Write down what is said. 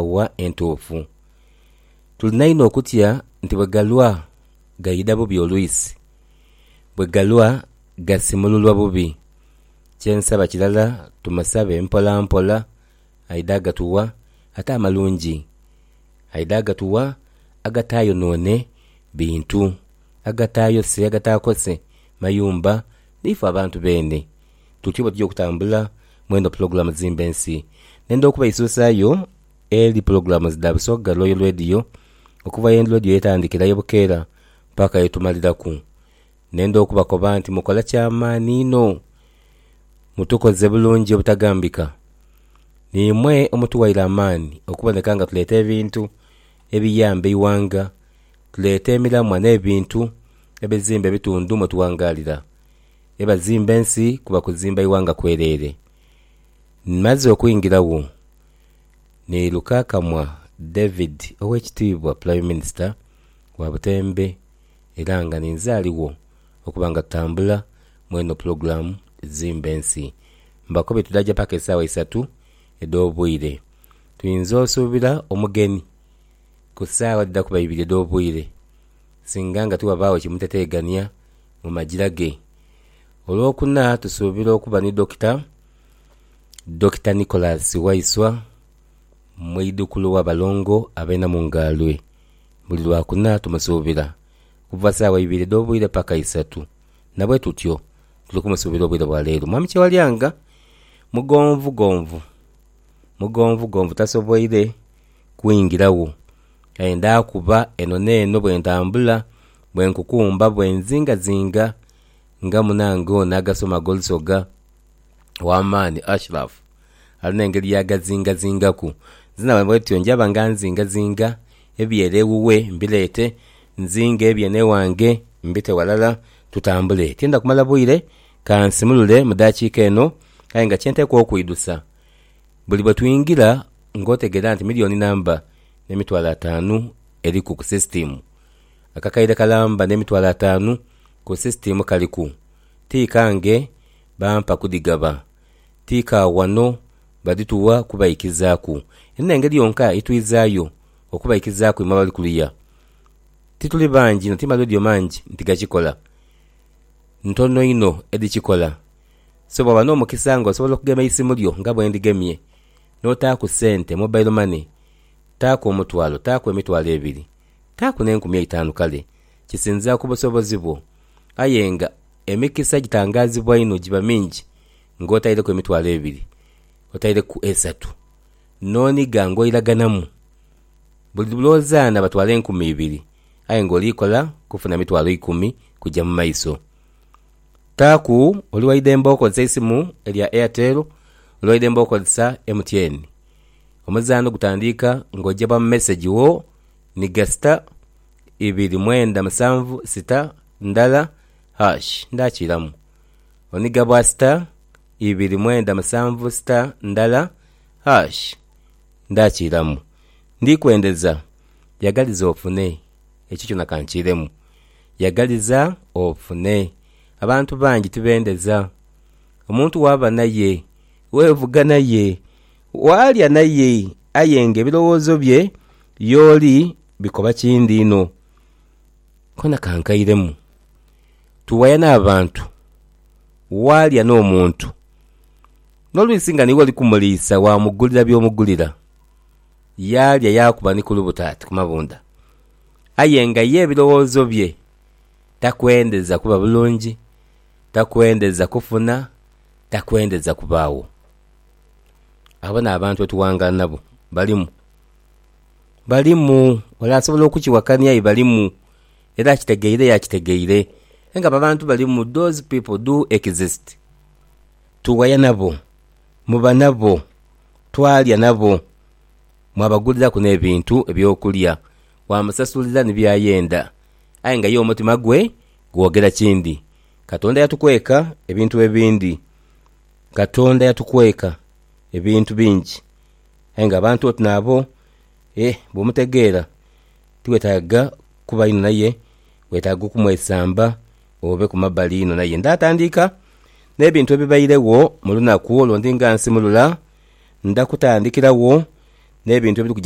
wa entuufu. Tulina inho okutya nti bwe galwa gaidha bubi olwisi, bwe galwa gasimululwa bubi. Kye nsaba kirala tumusabe mpolampola aidhe agatuwa, ate amalungi aidhe agatuwa agataayonoone bintu, agataayose, agataakose mayumba n'ife abantu beene. Tutyo bwetuja okutambula mwedho pulogulamu dhimba ensi nendha okubaisusayo eri pulogulamu dha Busoga Royal Radio okuva ye Radio yetandikira ye Bukeera paka yetumaliraku nendha okubakoba nti mukola kyamaani inho mutukoze bulungi obutagambika nimwe omutuwaire amaani okuboneka nga tuleta ebintu ebiyamba eighanga tuleta emiramwa nebintu ebizimba ebitundu mwetuwangalira. E bazimba ensi kuba kuzimba ighanga kwereere. Mmaze okwingira gho ni Lukakamwa David Owekitiibwa Prime Minister wa Butembe era nga ninze aligho okuba nga tutambula mweno pulogulaamu Zimba Ensi. Mbakobye tudhaja paka esaawa isatu edh'obwire. Twinza osuubira omugeni ku saawa dhidha kuba ibiri edh'obwire singa nga tighabaagho kimuteteegania mu magira ge. Olwokuna tusuubira okuba ni Dokita, Dokita Nicholas Waiswa, mweidhukulu wa balongo abeena mu Ngaalwe. Buli Lwakuna tumusuubira okuva saawa ibiri edh'obwire paka isatu na bwe tutyo tuli kumusuubira obwire bwa leero. Mwami Kyewalyanga mugonvugonvu mugonvugonvu tasoboire kwingiragho aye ndaakuba eno n'eno bwe ntambula Bwe nkukumba bwe nzingazinga nga munange ono agasoma ag'olusoga ow'amaani Ashraf alina engeri y'agazingazingaku, nze naba bwentyo njaba nga nzingazinga eby'ere ewuwe mbireete, nzinge eby'eno ewange mbite walala tutambule. Tiidha kumala bwire, ka nsimulule mu daakiika eno aye nga kye nteekwa okwidhusa, buli bwe twingira ng'otegeera nti miliyooni namba n'emitwalo ataanu eriku ku sisitiimu. Akakaire kalamba n'emitwalo ataanu ku sisitiimu kaliku. Ti kange, bampa kudhigaba. Ti ka wano, badhituwa kubaikizaaku. Eno n'engeri yonka ye twizaayo okubaikizaaku imwe abali kuluya. Tituli bangi inho, ti maleediyo mangi nti gakikola. Ntono inho edhikikola. So bw'oba n'omukisa nga osobola okugema eisimu lyo nga bwe ndigemye, n'otaaku sente, mobile money, taaku omutwalo, taaku emitwalo ebiri, Taaku n'enkumi eitaanu kale, kisinziira ku busobozi bwo. Aye nga emikisa gitangaazibwa inho giba mingi ng'otaileku emitwalo ebiri, otaileku esatu, n'onigha ng'oiraghanamu. Buli lwo zaana batwala enkumi ibiri, aye ng'oli kola kufuna mitwalo ikumi kuja mu maiso. Taaku oli waidembe okozesa eisimu erya Airtel, oli waidembe okozesa MTN. Omuzaanho gutandiika ng'oja ba mu mesegi wo ni gasita ibiri mwenda musanvu sita ndala hash ndhakiiramu. Oniga bwa sita ibiri mwenda musanvu sita ndala hash ndhakiiramu. Ndi kwendeza yagaliza ofune ekyo kyona ka nkiiremu. Yagaliza ofune. Abantu bangi tibendeza. Omuntu waaba n'aye. Weevuga naye, waalya naye, aye nga ebirowoozo bye y'oli bikoba kindi inho. Kona ka nkairemu, tuwaya n'abantu, waalya n'omuntu, n'olwisi nga niiwe oli kumuliisa waamugulira by'omugulira, yaalya yaakuba ni ku lubuto ati ku mabunda, aye nga ye ebirowoozo bye takwendeza kuba bulungi, takwendeza kufuna. takwendeza kubaagho. Abo n'abantu otughangala nabo balimu. Balimu. Ole asobola okukiwakania aye balimu. Era akitegeire aye akitegeire. Aye nga abo abantu balimu, those people do exist. Tughaya nabo, muba nabo, twalya nabo, mwabaguliraku n'ebintu eby'okulya, waamusasulira ni by'ayenda. Aye nga ye omutima gwe gwogera kindi. Katonda yatukweka ebintu ebindi. Katonda yatukweka ebintu bingi. Aye nga abantu oti naabo, eh, bw'omutegeera tiweetaaga kuba inho naye, weetaaga okumwesamba obe ku mabbali inho naye. Ndaatandiika n'ebintu ebibairegho mu lunaku olwo ndi nga nsimulula, ndakutandikiragho n'ebintu ebiri kuja